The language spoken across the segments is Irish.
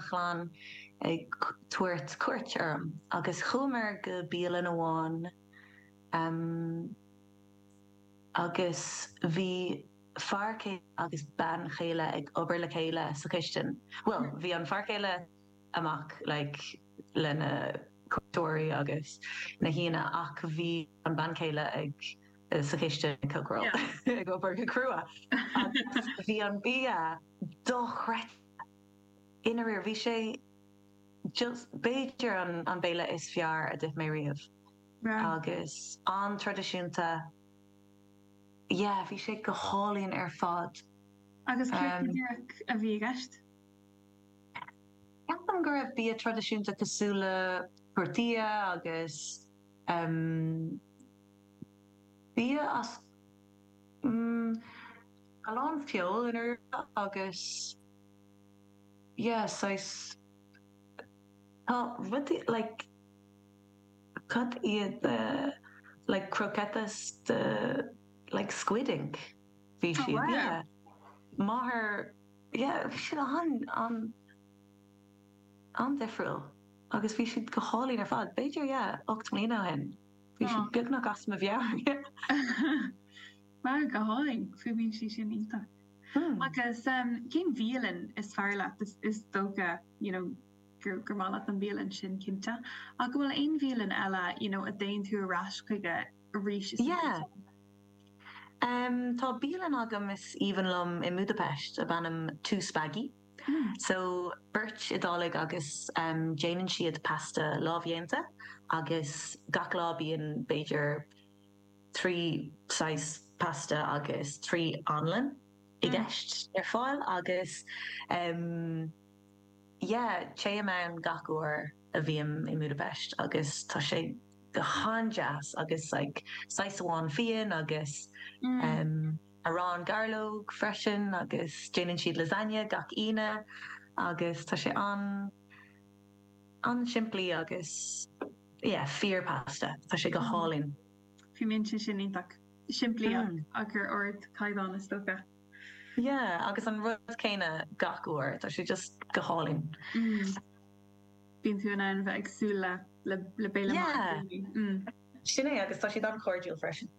chlann ag tabhairt cuairt orm agus chuamar go bialann amháin agus bhí fear céile agus bean chéile ag obair le chéile sa chistin, bhuel bhí an fear céile amach like le na cuairteoirí agus na haíonna ach bhí an bean chéile ag sa chistin ag cócaireáil yeah ag obair go crua agus bhí an bia dochreidte. I ndáiríre, bhí sé just, b'fhéidir, an béile is fearr a d'ith mé riamh agus an-traidisiúnta. Yeah, bhí sé go hálainn ar fad. Agus céard go díreach a bhí i gceist? Ceapaim go raibh bia traidisiúnta cosúil le tortilla agus bia as, umm, a lán feoil i ndáiríre agus Yeah, saghas, tá rudaí like, cad iad the like croquetas de like squid ink, bhí siad, yeah. Oh wow. Máthair, yeah, bhí siad an, an, an-difriúil agus bhí siad go hálainn ar fad, b'fhéidir, yeah, ocht mbliana ó shin, bhí siad beagnach as mo mheabhair. Á go hálainn, fuaimníonn sé sin iontach. Agus cén bhialann is fearr leat? Is dócha you know gur maith leat an bhialann sin, cinnte. Ach an bhfuil aon bhialann eile you know a dtéann tú ar ais chuige arís is arís eile? Yeah. Tá bialann agam is aoibhinn liom i mBúdaipeist ab ainm Two Spaghi. So beirt Iodálaigh agus déanann siad pasta lámhdhéanta agus gach lá bíonn b'fhéidir, trí saghas pasta agus trí anlann i gceist ar fáil agus yeah, téim ann gach uair a bhím i mBúdaipeist agus tá sé go han-deas agus like saghas amháin fíon agus arán gairleog freisin agus déanann siad lasagne gach Aoine agus tá sé an-. an-simplí agus yeah fíor pasta. Tá sé go hálainn. Fuaimníonn sé sin iontach. Simplí ach ar ardchaighdeán is dócha. Yeah agus an rud céanna gach uair. Tá sé just go hálainn. Bíonn tú in ann bheith ag súil le le béile maith daoine. Yeah sin é agus tá siad an-chairdiúil freisin.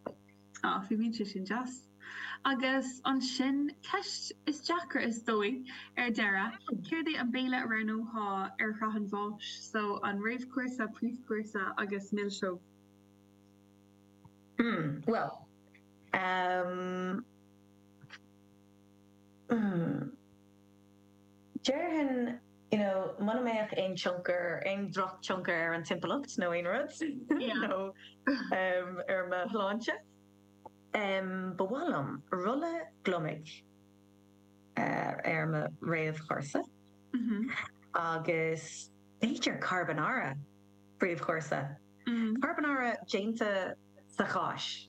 Á, fuaimníonn sé sin deas. Agus ansin ceist is deacra is dóigh ar deireadh, céard é an béile a roghnófá ar shraith an bháis, so an réamhchúrsa, príomhchúrsa agus milseog? Hmm, bhuel, ehm, hmm. Déarfainn, you know, muna mbeadh aon tionchar, aon dhrochthionchar ar an timpeallacht nó aon rud, nó ar mo shláinte, ba mhaith liom rolla gliomaigh ar mo réamhchúrsa agus b'fhéidir carbonara príomhchúrsa, carbonara déanta sa cháis.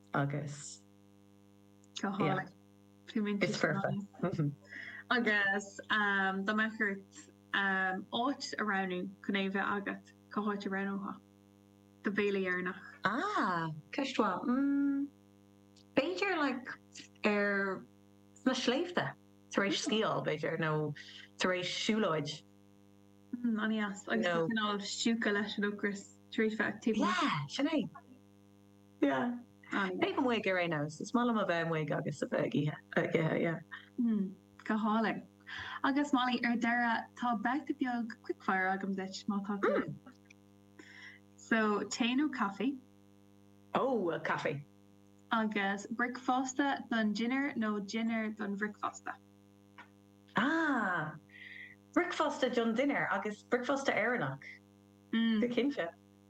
agus yeah it's perfect agus dá mbeadh ort áit a roghnú chun é a bheith agat cá háit a roghnófá do bhéile deireanach? Ah, ceist mhaith. Mm, b'fhéidir like ar sna sléibhte tar éis sciáil b'fhéidir nó tar éis siúlóid. Mm, agus tú stiúgtha leis an ocras tar éis é. Sin é. Yeah. Taobh amuigh ar aon nós, is maith liom a bheith amuigh agus a bheith ag ithe, ag ithe, yeah. Hmm, go hálainn. Agus Molly, ar deireadh, tá babhta beag quickfire agam duit, má tá tú linn. So, tae nó caife? Oh, well, caife. Agus bricfeasta don dinnéar nó dinnéar don bhricfeasta? Ah, bricfeasta don dinnéar agus bricfeasta Éireannach. Mm. Go cinnte.